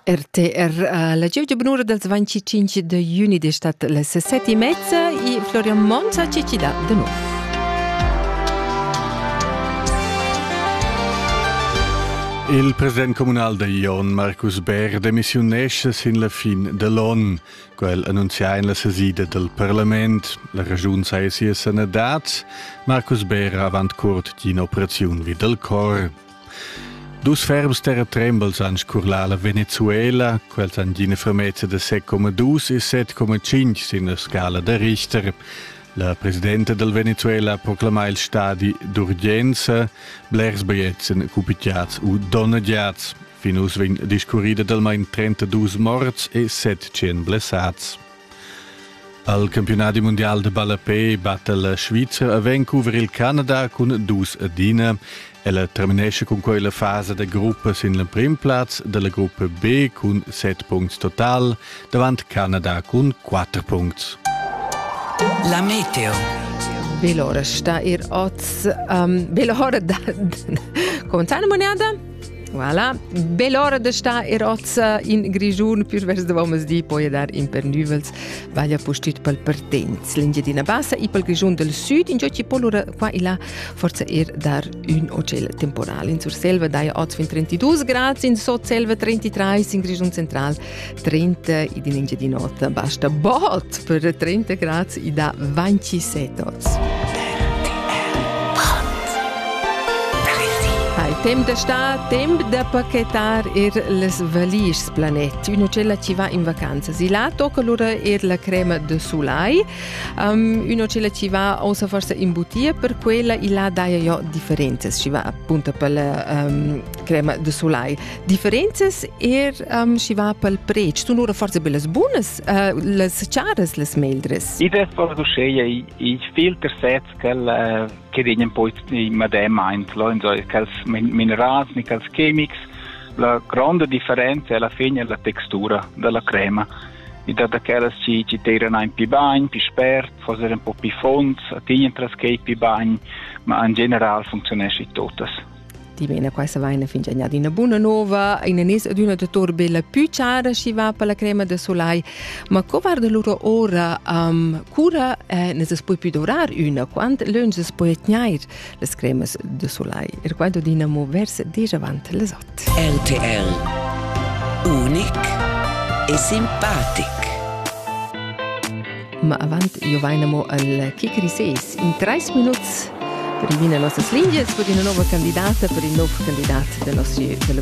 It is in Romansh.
RTR la gievgia bunura dals 25 de juni de stat les sette e mezza e Florian Monza ci ci dà de nuovo. Il president comunal da Ion Marcus Bär demissiunesce sin la fin dell'on. Quel annunzia in la sesida del parlament. La ragiun sai sia sanadad. Marcus Bär avant curt d'in operaziun vid del cor. Dus ferms terratrembels han scurlà la Venezuela, quels han d'ina fermezza da 7,2 e 7,5 sin la scala da Richter. La presidenta del Venezuela proclama il stadi d'urgenza, blers biglietten cupitiats u donneggiats. Fin uss vegn discurrida d'almain 32 morts e 700 blessats. Al campionadi mundial de ballapé batta la Svizra a Vancouver il Canada cun dus adina. Ella terminesce cun quella fasa da gruppa sin l'emprim plaz della gruppa B cun 7 punts total, davant Canada cun 4 punts. La meteo. Velora sta ir oz. Um, velora da... Conta la moneda? Voilà, bell'ora da sta e rozza in Grischun, più vers da di, poi dar in per nüvels, vaglia postit pal Pertenz, l'Engiadina Bassa e pal Grischun del Sud, in ci polura qua e là, forza er dar un ocel temporal. In Surselva dai oz fin 32 gradi, in Sotselva 33, in Grischun central 30 ed in Engiadin'Ota. Basta bot per 30 grads e da 27 oz. Temp da sta, temp da pachetar er les valischs planet. Una cella ci va in vacanza. Si là tocca lura er la crema de soleil. Um, una cella ci va osa forse in butia per quella e là daia jo differenze. Ci va appunto per la um, crema de soleil. Differenzas er um, schi va pel pretsch sun lura forsa be las bunas, uh, las charas, las meldres. I dess far uscheia i filter sets quel uh, che degnan poi in madem aint, quels minerals, quels chemics. La grande differenza è alla fine la textura della crema. I dat aquelas che ci tiran ein pi bagn, pi spert, forse un po' pi fonds, attignan tras che pi bagn, ma in general funzionesce tuttas. Dimena quai savaina fin già d'ina buna nova, in anis ed üna dator bella pü chara schi va per la crema de solai. Ma co varda lura ora um, cura eh, ne se poi più dorar üna, quant lön se poi tgnair las cremas de solai? E quando dina mo verse déjà avant les ot. RTL Unic e simpatic. Ma avant giovaina mo al kick reses in trais minuts per riminer nossas lingias per ina nova candidata, per in nov candidat da nossa